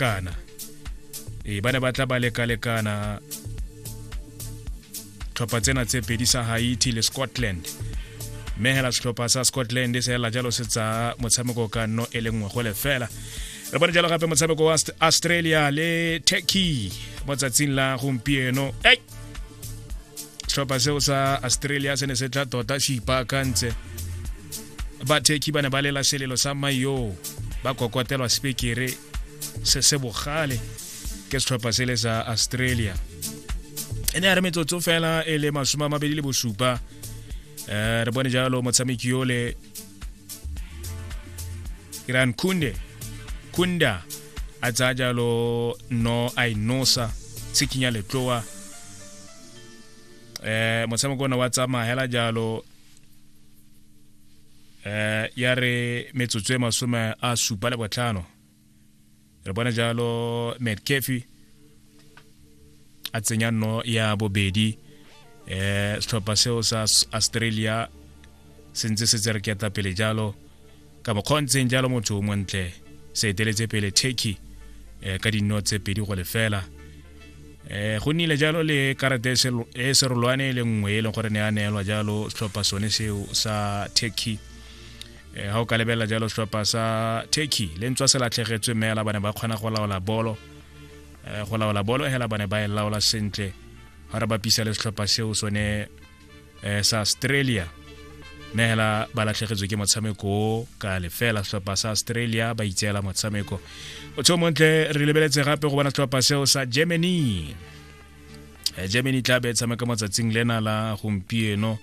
kana ee ba ne ba tla ba lekalekana tlhopha tsena tse pedi sa haiti le scotland mme hela setlhopha sa scotland se hela jalo se tsaya motshameko ka nno e le nngwe go lefela re bone jalo gape motshameko wa australia le turkey mo tsatsing la gompieno ei setlhopha seo sa australia se ne se tla tota se ipaakantse bathekhi ba ne ba lela selelo sa mayo ba kokotelwa sepekere se se bogale ke setlhopha sele sa australia e ne ya re metsotso fela e le masome a mabedi le bosupa um re bone jalo motshameki yole iran kunde kunda a tsaya jalo no a inosa tshikinya letloa um motshameko ona wa tsamaya hela jalo eh ya re metsotso e masome a supa le botlhano re bona jalo metcafe a tsenya nno ya bobedi eh setlhopha seo sa australia se ntse se tse re ketla pele jalo ka bokgontseng jalo motho o montle se eteletse pele turkey eh, ka dino tse pedi go lefela eh, go nnile jalo le karata e serolwane e le nngwe e leng gore ne a neelwa jalo setlhopha sone seo sa turkey ga eh, o ka lebelela jalo setlhopha sa turkey le ntswa se latlhegetswe mme ba ne ba kgona go laola bolo eh, go laola bolo hela ba ne ba e laola sentle ga re bapisa le setlhopha seo sone eh, sa australia mme hela ba latlhegetswe ke motshameko o ka lefela setlhopha sa australia ba itseela motshameko o tsho montle re lebeletse gape go bona setlhopha seo sa germany eh, germany tla be e tshameka motsatsing lena la gompieno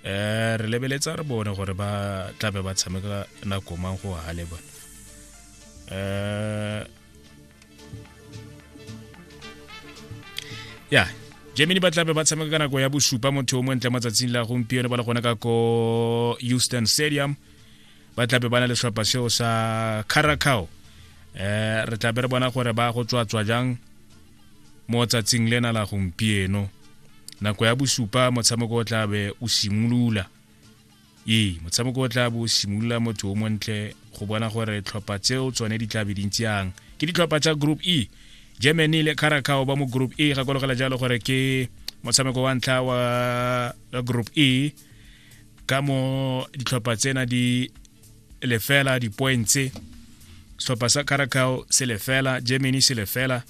eh re lebeletsa re bone gore ba tlabe ba tshameka nako mang go hale ba eh ya germany ba tlabe ba tshameka ka nako ya bosupa motho o montle matsatsing la gompieno ba le gona ka ko houston stadium ba tlabe ba na le setlhopha seo sa caracao eh re tlabe re bona gore ba go tswatswa jang mo tsatsing lena la gompieno nako ya bosupa motshameko o tlabe o simolola ee motshameko o tla bo simolola motho o montle go bona gore tlhopha tseo tsone di tla be dintsi yang ke ditlhopha tsa group e germany le caracao ba mo group e gakologela jalo gore ke motshameko wa ntlha wa group e ka mo ditlhopha tsena di lefela dipointse setlhopha sa caracao se lefela germany se lefela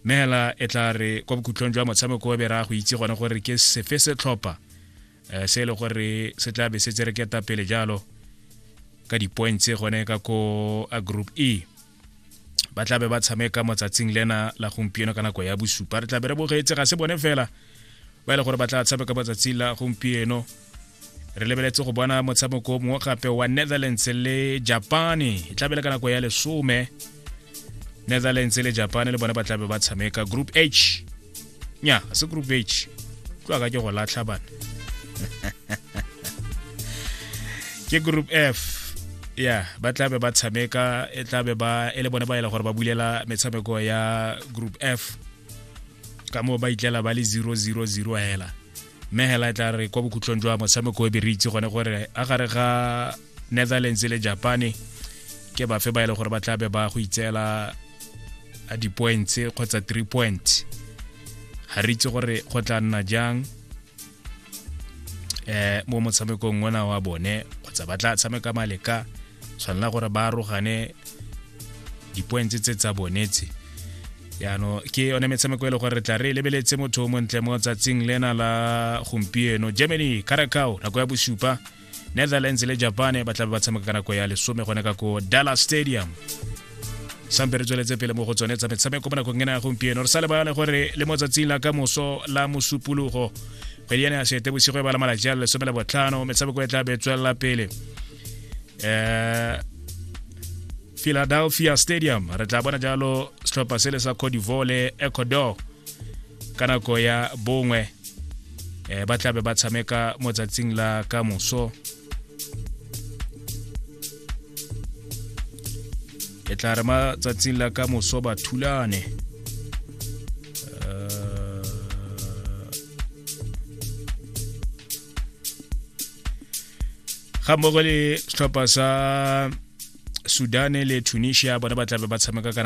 mme hela e tla re kwa bokhutlong jwa motshameko o be ra go itse gone gore ke sefe setlhopha um se e le gore se tla be se tsere ketapele jalo ka di-points gone ka ko a group e ba tla be ba tshameka motsatsing lena la gompieno ka nako ya bosupa re tla be re bogetse ga se bone fela ba e le gore ba tla tshameka motsatsing la gompieno re lebeletse go bona motshameko mongwe gape wa netherlands le japane e tlabele ka nako ya lesome netherlands le japane le bone ba tlabe ba tshameka group h nya ga se group h tlwa ka ke go latlha bana ke group f ya ba tla be ba tshameka e tla be ba e le bone ba e le gore ba bulela metshameko ya group f ka moo ba itlela ba le 000 hela mme hela e tla re kwa bokhutlong jwa motshameko e be re itse gone gore a gare ga netherlands le japane ke bafe ba e le gore ba tla be ba go itseela di-points kgotsa three points ga re itse gore go tla nna jang um mo motshamekong ona wa bone kgotsa ba tla tshameka maleka tshwanela gore ba arogane di-points tse tsa bonetse yaano ke yone metshameko e le gore re tla re lebeletse motho o montle mo tsatsing lena la gompieno germany caracao nako ya bosupa netherlands le japan ba tlabe ba tshameka ka nako ya lesome gone ka ko dallas stadium sampe re tsweletse pele mo go tsone tsa metshameko mo nakong ena ya gompieno re sa lebale gore le mo tsatsing la ka moso la mosupologo kgwedi ya ne ya sete bosigo e ba la malatsi a lesome le botlhano metshameko e tla be tswelela pele um philadelphia stadium re tla bona jalo setlhopha sele sa codivole ecuador ka nako ya bongwe eh, ba tlabe ba tshameka mo tsatsing la ka moso e tla re ma tsatsing la ka moso ba thulane eh, ga mmogo le setlhopha sa sudane le tunisia bona ba tlabe ba tshameka kana